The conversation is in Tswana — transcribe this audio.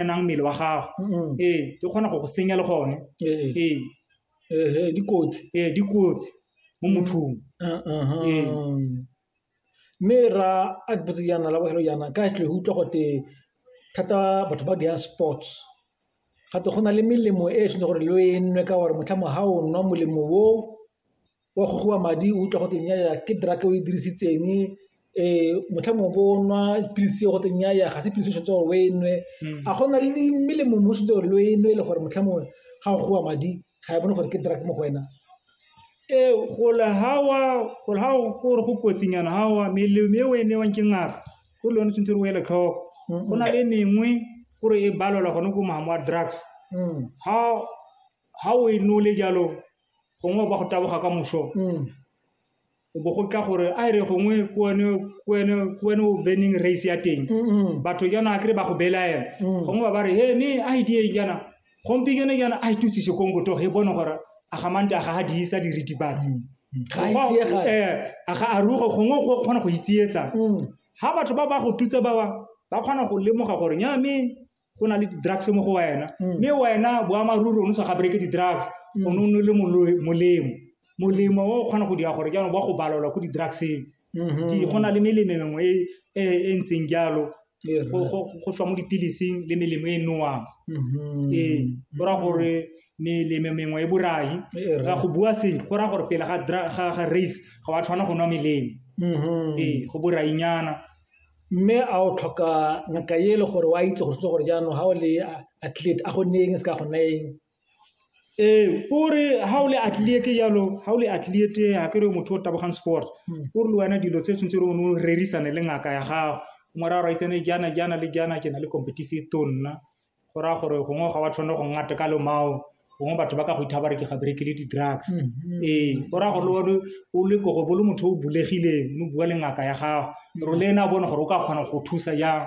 enang mmele wa gago ee di kgona go go senya le gone ee dikotsi ee dikotsi mo mothong ee mme ra a ke botse jaana la bogelo jaana ka tle go utlwa gote thata batho ba diyang sports gate go na le melemo e e tshwanetse gore le o e nwe ka gore motlha mo ga o nwa molemo o wa gogiwa madi o utlwa go teng ya ke drug o e dirisitseng motlha mongwe bo nwa dipilisi go teng ya ga se pilisi o tshwanetse gore o e nwe hmm. a gona le melemo mo setse gore lo e nwe le gore motlha mongwe ga o gowa madi ga e bone gore ke drug mo go wena ee gole ga wa gore ga gore go kotsinyana ga wa melemo e o e newang ke ngaka ko le yone tshwanetse re o ele tlhoko hmm. go na le mengwe kore e balelwa gone ko maamo a drugs ga hmm. o e nole jalo gongwe ba go taboga ka moso mm. o bo go tla gore a e re gongwe ke wene o veneng race ya teng batho jana a kry ba go belaela mm. gongwe ba ba re he me a idie e jana gompikene jana a itutse e sekong botogo e bone gore a gamante a ga ga diisa diritibatsi mm. eh, a ga aruge gongwe go kgona go itsietsa ga batho ba ba go tutse bawa ba kgona go lemoga gore nya me go na le di-drugs mo go wena mm. mme wena boamaruri o ne sa ga bereke di-drugs mm. o ne o ne le molemo molemo o o kgona go dira gore jaanong ba go balelwa ko di-drugseng mm-hmm. go na le melemo mengwe e, e, e ntseng jalo go tswa mo dipilising le melemo e nowang mm-hmm. ee go raya gore melemo mengwe e borai ga go bua sentle go raya gore pele ga race ga wa tshwana go nwa melemo mm-hmm. ee go borainyana Mme a o tlhoka ngaka e le gore o a itse gore se gore jaanong ga o le athlete a go nne eng se ka go nna eng ee kore ga o le athlete jalo ga o le athlete ga ke re motho o tabogang sport hmm. kore le wena dilo tse tshwanetse re o ne o rerisane le ngaka ya gago ngwara a raitsane jaana jaana le jaana ke na le competition to nna Go raya gore gongwe ga wa tshwanela go nna teka lomao, gongwe batho ba ka go ithaya ba re ke ga bereke le di-drugs. Mhm. Ee, go raya gore le one o le ko go bo le motho o bulegileng, o bua le ngaka ya gago, gore le ene a bone gore o ka kgona go thusa jang.